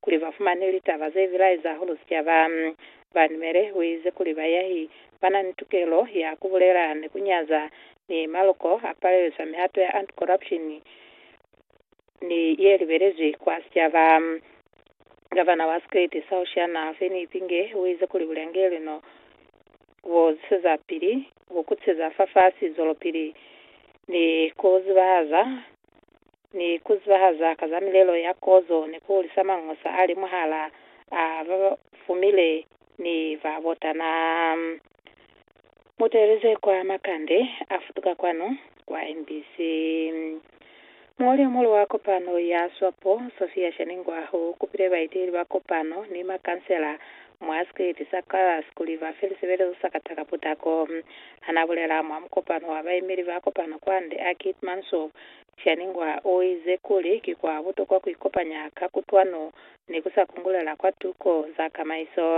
kuli ba fumane litaba ze bilaeza hahulu sicaba. Banumele u ize kuli bayahi ba na ni tukelo ya ku bulela ni ku nyaza, mi maloko a palelisa mihato ya anti-corruption ni ye libelezwi kwa sicaba. Gavana wa sikriti sa Oceania, Feni Ipinge, u ize kuli bulangeli no bu ziseza pili ku kutiseza fafasi, zwelopili ni ku zibahaza ni ku zibahaza ka za milelo ya kozo ni ku hulisa mangosa a li mwahala a ba fumile ni ba botana. Mu teeleze kwa makande a futuka kwanu kwa MBC. Muñoli yo muhulu wa kopano ya Swapo, Sophia Shaningwaho, u kupile baeteleli ba kopano ni makansela mwa sikwiti sa Clarus kuli ba fe lisebelezo sa kata ka putako. Ha n'a bulela mwa mukopano wa baemeli ba kopano kwande a Keetmanshoop, Chaningwa o ize kuli ki kwa butokwa ku ikopanya ka kutwano ni ku sa kungulela kwa tuko za kamaiso.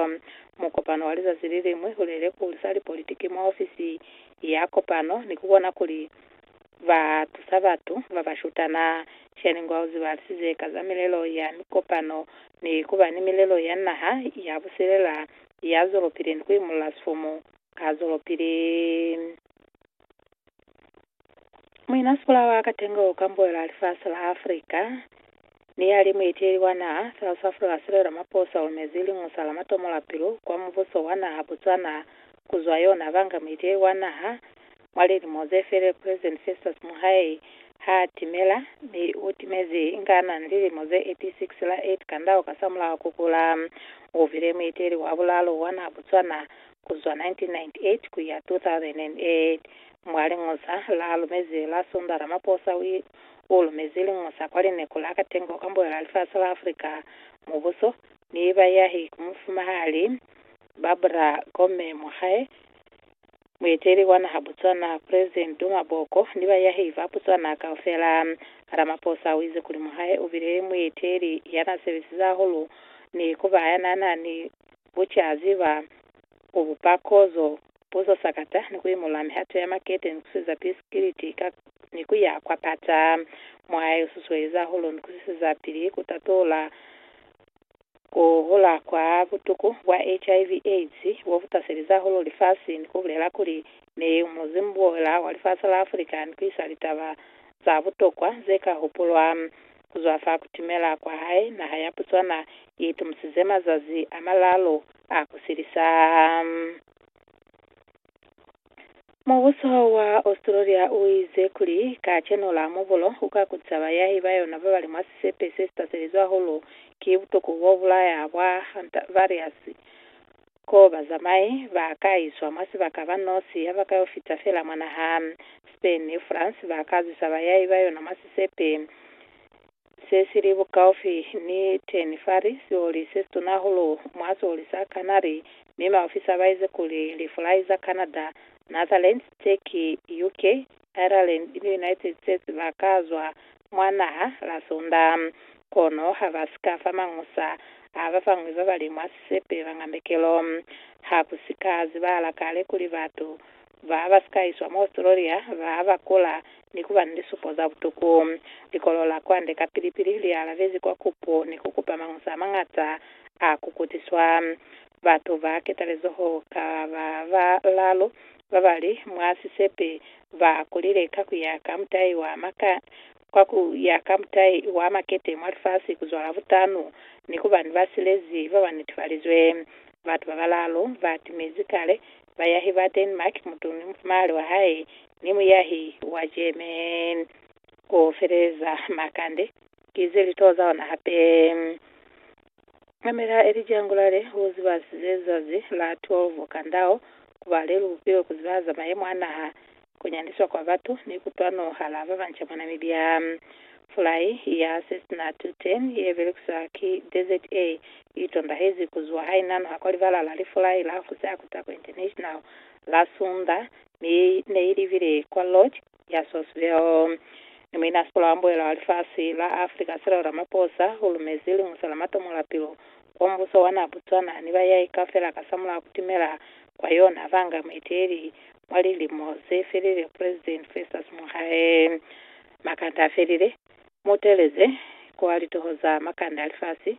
Mukopano wa lizazi li liñwi u lile ku hulisa lipolitiki mwa ofisi ya kopano ni ku bona kuli ba tusa batu ba ba shutana. Chaningwa u zibalisize ka za milelo ya mikopano ni ku ba ni milelo ya naha ya busilela ya zwelopili ni ku imolola sifumu ka zwelopili. Muinasikola wa Katengo u kambuela lifasi la Africa ni ya li mueteleli wa naha South Africa Cyril Ramaphosa ulumezi Lingusa la matomo la pilu kwa mubuso wa naha Botswana ku zwa yona banga mueteleli wa naha mwa lilimo ze fele President Festus Mohae ha timela mi u timezi inga na ni lilimo ze 86 la 8 kandao kasamulaho ku kula u bile mueteleli wa bulalo wa naha Botswana ku zwa 1998 ku ya 2008 Mwa Liñusa la lumezi la Sunda, Ramaphosa u lumezi liñusa kwa lineku la katengo ka mbuela lifasi la Africa, mubuso, ni bayahi ku mufumahali Barbara Gomme Mokgae, mueteli wa naha Botswana President Duma Boko ni bayahi ba Botswana kaufela. Ramaphosa uize kuli Mokgae ubile mueteli yana sebesize hahulu ni kuba yanana ni bucaziba Ku bupa kozo, puzo sakata, ni ku imolola mihato ya makete ni ku siza pili sikiliti ka ni ku ya kwa pata. Mwaya yo susueleza hahulu ni ku siseza pili ku tatula ku hula kwa butuku bwa HIV, AIDS bo bu taselezi hahulu lifasi ni ku bulela kuli, Ne u muzimu buola wa lifasi la Afrika ni ku isa litaba za butokwa ze ka hupulwa. Ku zwa fa kutimela kwa hae, naha ya Botswana i itumusize mazazi a malaalu a ku silisa. Mubuso wa Australia u ize kuli ka chenula mubulo u ka kutisa bayahi ba yona ba ba li mwa sisepe se si taselizwe hahulu ki butuku bo bulaya bwa Hantavirus Ko ba zamaye, ba ka iswa mwa sibaka ba nosi ha ba ka yo fita fela mwa naha. Spain ni France ba ka zwisa bayai ba yona mwa sisepe se si li bukaufi ni Tern Fari, sioli se situna hahulu mwa sioli sa Canary, mi maofisa ba ize kuli lifulai za Canada, Netherlands, Turkey, UK, Ireland ni United States ba ka zwa mwa naha la Sunda. Kono ha ba si ka fa mañusa a ba bañwi ba ba li mwa sisepe bañambekelo. Ha ku si ka zibahala kale kuli batu ba ba si ka iswa mwa Australia ba ba kula ni ku ba ni lisupo za butuku. Likolo la kwande kapili-pili li alabezi kwa kupo ni ku kupa mañusa a mañata a ku kutiswa. Batu ba ketalezoho ka ba balalu ba ba li mwa sisepe ba kulile ka ku ya ka mutai wa maka, kwa ku ya ka mutai wa makete mwa lifasi ku zwala butanu, ni ku ba ni basilezi ba ba netefalizwe. Batu ba balaalu ba timezi kale, bayahi ba Denmark, mutu ni mufumahali wa hae, ni muyahi wa German. Ku feleleza makande, ki ze li toza ona hape. Mamela Elija ngulale u ziba zezazi la 12 kandao kuba lelu bupilo kuziba za mayemo a naha, kunyandiswa kwa batu ni kutwano hala babanca mwa Namibia. Fulai ya Cessna 210 ye belekiswa ki DZA i tondahezi ku zuwa ha i nanuha kwa libala la lifulai la Hosea Kutako International la Sunda mi ne i libile kwa Lodge ya Sourceville. Ni muina sikola wa mbuelo wa lifasi la Africa Cyril Ramaphosa u lumezi liñuso la matomolapilo kwa mubuso wa naa Botswana ni bayai kaufela kasamulaho kutimela kwa yona banga mueteleli mwa lilimo zefelile President Festus Mogae. Makanda afelile, muuteleze kwa litoho za makanda a lifasi.